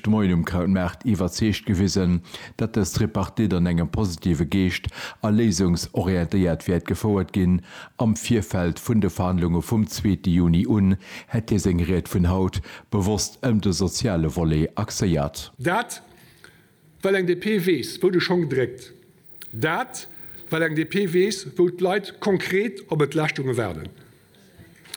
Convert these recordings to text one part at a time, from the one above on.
De Moien um Krautmaart iwwerzeegt gewisen, datt dës Tripartite an engem positive Geescht a léisungsorientéiert wäert gefouert ginn. Am Virfeld vun de Verhandlunge vum zweete Juni un hätt hie seng Ried vun haut bewosst ëm de soziale Volet axéiert. Dat, well eng DP weess, wou de Schong dréckt. Dat, well eng DP weess, wou d'Leit konkret op Entlaaschtunge waarden.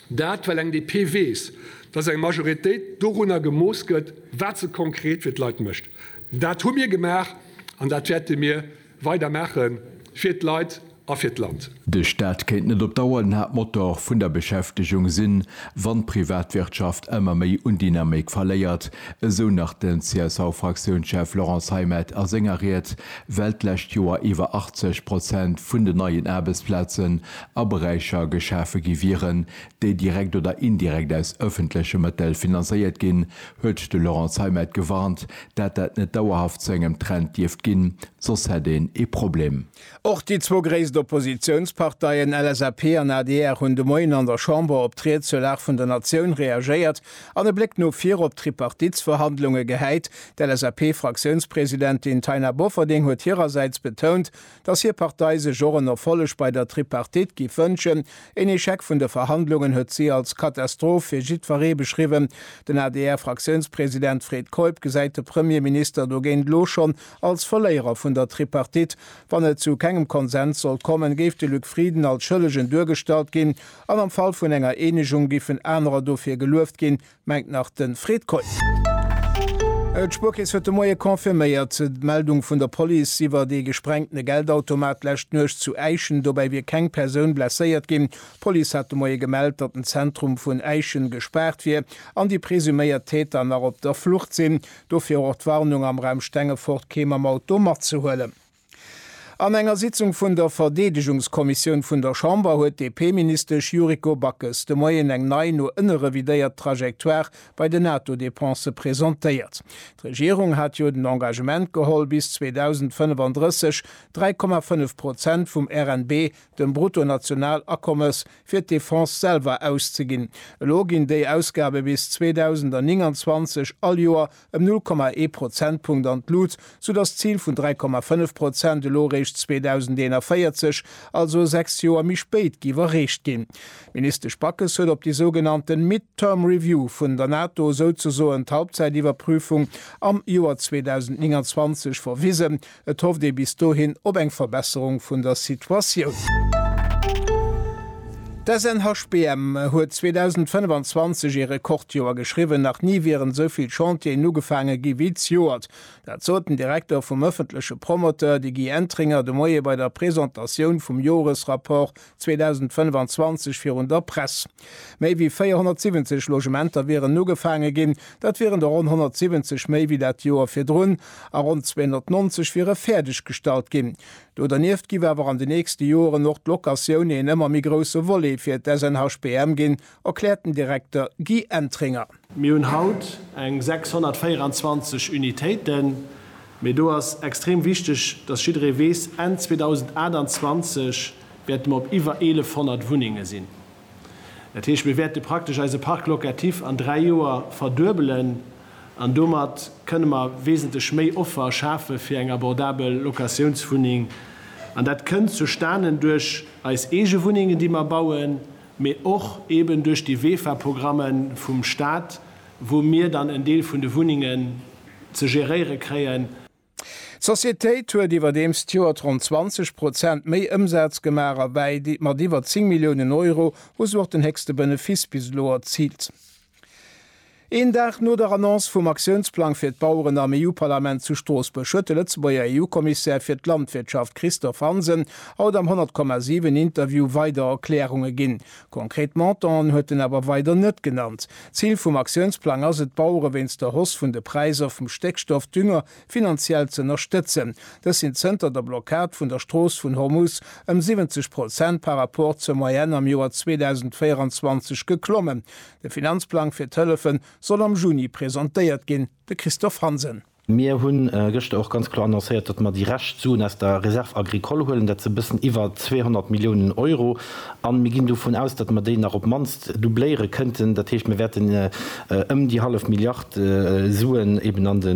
Dat, well eng DP weess, datt eng Majoritéit dorunner gemooss gëtt, wat se konkret fir d'Leit mécht. Dat hu mir gemaach an dat wäerte mir weider maache fir d'Leit a fir d'Land. De Staat kéint net op Dauer den Haaptmotor vun der Beschäftegung sinn, wann d'Privatwirtschaft ëmmer méi un Dynamik verléiert, esou nach den CSV-Fraktiounschef Laurent Zeimet a senger Ried, well d'lescht Joer iwwer 80 Prozent vun den neien Aarbechtsplazen a Beräicher geschafe gi wieren, déi direkt oder indirekt aus ëffentleche Mëttel finanzéiert ginn, huet de Laurent Zeimet gewarnt, dat dat net dauerhaft zu engem Trend dierft ginn, soss hätt een ee Problem. Och déi zwou gréisst Oppositiounsparteien LSAP an adr hunn de Moien an der Chamber op d'Ried zur Lag vun der Natioun reagéiert an e Bléck no vir op d'Tripartitsverhandlunge gehäit. D'LSAP-Fraktiounspresidentin Taina Bofferding huet hirersäits betount, datt hir Partei sech och en Erfolleg bei der Tripartite giff wënschen. Een Echec vun de Verhandlungen huet si als Katastroph fir jiddweree beschriwwen. Den ADR-Fraktiounspresident Fred Keup gesäit de Premierminister dogéint elo schonn Als Verléierer vun der Tripartite, wann et zu kengem Konsens sollt kommen, géif de Luc Frieden als Schëllegen duergestallt ginn an am Fall vun enger Eenegung giffen anerer dofir gelueft ginn, mengt nach de Fred Keup. D'Spuerkeess huet de Moie confirméiert, d'Meldung vun der Police iwwert ee gesprengtene Geldautomat d'lescht Nuecht zu Äischen. Dobäi wier keng Persoun blesséiert ginn. D'Police hat de Moie gemellt, datt den Zentrum vun Äischen gespaart wier an déi presuméiert Täter nach op der Flucht sinn. Dofir och d'Warnung am Raum Stengefort kee mam Auto matzehuelen. An enger Sitzung vun der Verdeedegungskommissioun vun der Chamber huet d'DP-Ministesch Yuriko Backes de Moien eng nei, no ënne revidéiert Trajectoire bei den NATO-Depensë presentéiert. D'Regierung hat jo den Engagement geholl bis 2035 3,5 Prozent vum RNB, dem Bruttonationalakommes, fir d'Defense selwer auszeginn. Elo ginn déi Ausgabe bis 2029 all Joer ëm 0,1 Prozentpunkt an d'Lut, soudass d'Zil vun 3,5 Prozent elo eréischt 2041, also sechs Joer méi spéit, géif erreecht ginn. D'Ministesch Backes huet op déi sougenannte Mid-term review vun der NATO, souzesoen d'Halbzäitiwwerprüfung, am Joer 2029 verwisen. Et hofft ee bis dohin op eng Verbesserung vun der Situatioun. D'SNHBM huet 2025 ee Rekordjoer geschriwwen, nach ni wieren esou vill Chantieren ugefaange gi wéi zejoert. Dat sot den Direkter vum ëffentleche Promoteur, de Guy Entringer, de Moie bei der Presentatioun vum Joresrapport 2025 virun der Press. Méi wéi 470 Logementer wieren ugefaange ginn, dat wieren der ronn 170 méi wéi dat Joer virdrun, a ronn 290 wiere fäerdeg gestallt ginn. Do dernieft giff awer an den nächste Joeren och d'Locatioune en ëmmer méi grousse Volet fir d'SNHBM ginn, erkläert den Direkter Guy Entringer. Mir hunn haut eng 624 Unitéiten, mee do ass extrem wichteg, dass jidderee weess, Enn 2028 wäerte mer op iwwer 1.100 Wunnenge sinn. Dat heescht, mir wäerte praktesch eise Parc locatif an dräi Joer verduebelen an domat kënne mer wesentlech méi Offer schafe fir eng abordabel Locatiounswunneng. An dat kënnt zustanen duerch eis eege Wunnengen, déi mer bauen, mee och eben duerch déi WEFA-Programme vum Stat, wou mir dann en Deel vun de Wunnengen ze geréiere kréien. D'Societéit huet iwwerdeems d'Joert ronn 20 Prozent méi Ëmsaz gemaach a wäit mat iwwer 10 Milliounen Euro hu se och den héchste Benefiss bis elo erziilt. Een Dag no der Annonce vum Aktiounsplang fir d'Baueren am EU-Parlament zu Stroossbuerg huet de Lëtzebuerger EU-Kommissär fir d'Landwirtschaft Christophe Hansen haut am 100,7 Interview weider Erklärunge ginn. Konkret Montanten huet en awer weider net genannt. D'Zil vum Aktiounsplang ass et, d'Bauere wéinst der Hausse vun de Präisser vum Stéckstoff, Dünger, finanziell z'ënnerstëtzen. Dës sinn zënter der Blockad vun der Strooss vun Hormuz ëm 70 Prozent par rapport zur Moyenne am Joer 2024 geklommen. De Finanzplang fir d'Hëllefe soll am Juni presentéiert ginn, de Christophe Hansen. Mir hu gëschter och ganz kloer annoncéiert, datt mer déi Rescht Suen aus der Réserve agricole huelen. Dat si e bëssen iwwer 200 Milliounen Euro. A mir ginn dovun aus, datt mer déi nach op d'mannst doubléiere kënnten. Dat heescht, mir wäerten ëm déi hallef Milliard Suen eeben an de.